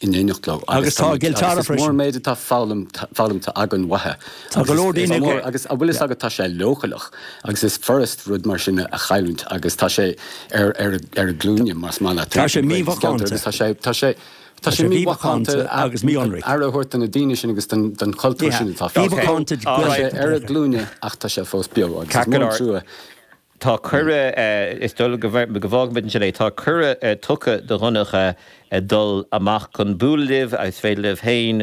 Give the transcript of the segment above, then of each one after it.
in éineacht leo agus tá gil teara freisin. Is mór an méid atá foghlamtha againn uaithi. Tá go leor daoine aige. Agus an bhfuil fhios agat tá sé leochaileach agus is furasd rud mar sin a chailliúint agus tá sé ar a glúine más maith leat. Tá sé mímhacánta. Tá sé mímhacánta agus míionraic. Aire a thabhairt do na daoine sin agus don chultúr sin atá fós. Mímhacánta. Tá sé ar a glúine ach tá sé fós beo agus is mór an trua. Tá cuireadh, is dóigh go bhfágfaimid ansin é, tá cuireadh tugtha do Dhonncha dul amach chun bualadh libh agus is féidir libh féin,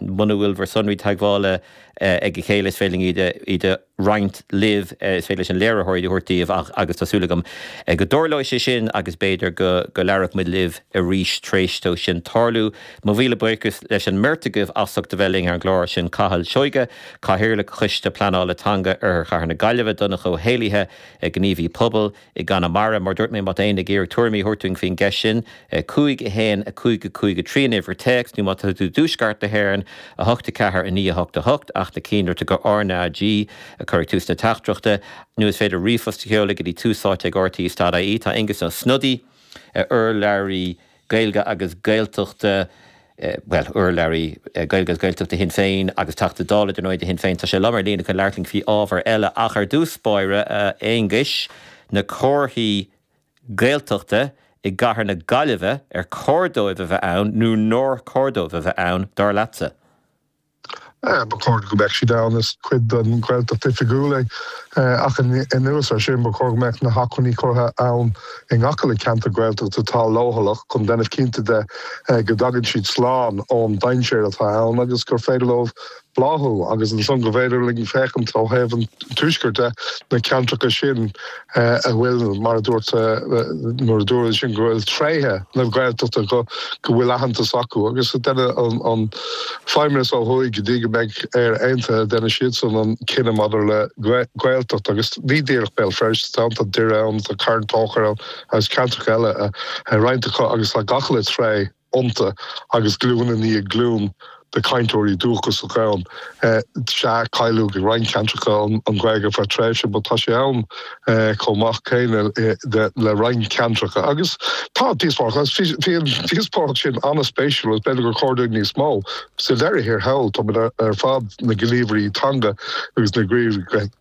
muna bhfuil bhur sonraí teagmhála ag a chéile, is féidir linn iad a roinnt libh, is féidir leis an léiritheoir iad a thabhairt daoibh ach, agus tá súil agam, go dtarlóidh sé sin agus b'fhéidir go labhróidh muid libh arís tar éis dó sin tarlú. Mo mhíle buíochas leis an mbeirt agaibh as ucht a bheith linn ar an gclár, sin Cathal Seoighe, Cathaoirleach Choiste Pleanála Teanga Oirthear Chathair na Gaillimhe, Donncha Ó hÉallaithe, gníomhaí pobail i gConamara, mar dúirt mé, má tá éinne ag iarraidh tuairimí a thabhairt dúinn faoin gceist sin, 5 1 5 5 3 an uimhir téacs, nó má tá tú i dTuaisceart na hÉireann, 8 4 9 8 8, ach déan cinnte RnaG a chur ag tús na teachtaireachta, nó is féidir ríomhphost a sheoladh go dtí túsáite ag rte. ie. Tá Aengus Ó Snodaigh, urlabhraí Gaeilge agus Gaeltachta, bhuel, urlabhraí Gaeilge agus Gaeltachta Shinn Féin agus Teachta Dála, ar ndóigh, do Shinn Féin. Tá sé liom ar an líne chun labhairt linn faoi ábhar eile ach, ar dtús báire, a Aonghuis, na comharthaí Gaeltachta i gcathair na Gaillimhe, ar chóir dóibh a bheith ann nó nár chóir dóibh a bheith ann, dar leatsa? Ba chóir go mbeadh siad ann, is cuid den Ghaeltacht Oifigiúil é. Ach anuas ar sin, ba chóir go mbeadh na hacmhainní curtha ann i ngach uile cheantar Gaeltachta atá leochaileach chun déanamh cinnte de go dtagann siad slán ón dainséar atá ann agus gur féidir leo bláthú agus ansan gur féidir linn féachaint ó thaobh an tuaiscirt de na ceantracha sin. a bhfuil, mar a dúirt, mar a dúradh ansin go bhfuil tréithe na Gaeltachta go bhfuil aitheantas acu agus go ndéanfadh an Feidhmeannas ó thuaidh go dtí go mbeidh Éire Aontaithe déanfadh siadsan an cinneadh maidir le Gaeltacht agus ní díreach Béal Feirste tá an tá Doire ann tá Carn Tóchair ann agus ceantracha eile a roinnt acu agus tá gach uile tréith iontu agus glúin i ndiaidh glúin de chainteoirí dúchasacha ann. Sea, cailleadh i roinnt ceantracha an Ghaeilge ar feadh tréimhse but tá sé ann chomh maith céanna le roinnt ceantracha agus tá díospóireacht ann agus bhí an díospóireacht sin an-spéisiúil agus b'fhéidir gur chóir dúinn níos mó. Sa deireadh thiar thall, táimid ar fad, na gníomhairí teanga agus na gníomhairí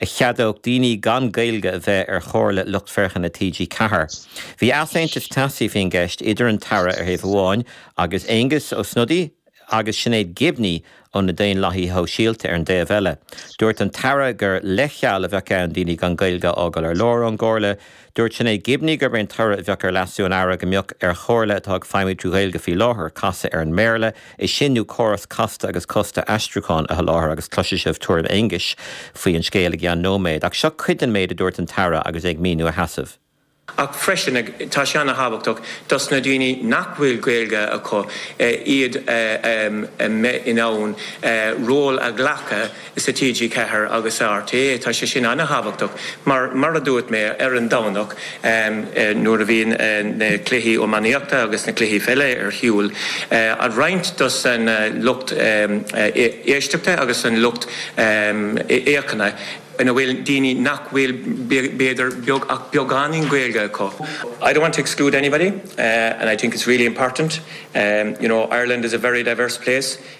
a cheadódh daoine gan Gaeilge a bheith ar Chomhairle Lucht Féachana TG Ceathair. Bhí easaontas teasaí faoin gceist idir an tAire ar thaobh amháin agus Aengus Ó Snodaigh agus Sinéad Gibney ó na Daonlathaithe Sóisialta ar an dtaobh eile. Dúirt an tAire gur leithcheal a bheadh ann daoine gan Gaeilge a fhágáil ar lár ón gComhairle Dúirt Sinéad Gibney gurb é an toradh a bheadh ar leasú an Aire go mbeadh ar chomhairle atá ag feidhmiú trí Ghaeilge faoi láthair casadh ar an mBéarla é sin nó córas casta agus costasach aistriúcháin a sholáthar agus cloisfidh sibh tuairim Aonghuis faoi an scéal i gceann nóiméad ach seo cuid den méid a dúirt an tAire agus é ag míniú a sheasaimh. Ach freisin, tá sé an-thábhachtach dos na daoine nach bhfuil Gaeilge acu iad a bheith in ann ról a ghlacadh sa TG4 agus sa RTÉ. Tá sé sin an-thábhachtach mar, mar a dúirt mé ar an Domhnach nuair a bhíonn na cluichí iománaíochta agus na cluichí pheile ar shiúl, roinnt dos an lucht éisteachta agus an lucht fhéachana an bhfuil daoine nach bhfuil b'fhéidir ach beagáinín Gaeilge acu. I don't want to exclude anybody and I think it's really important, you know, Ireland is a very diverse place.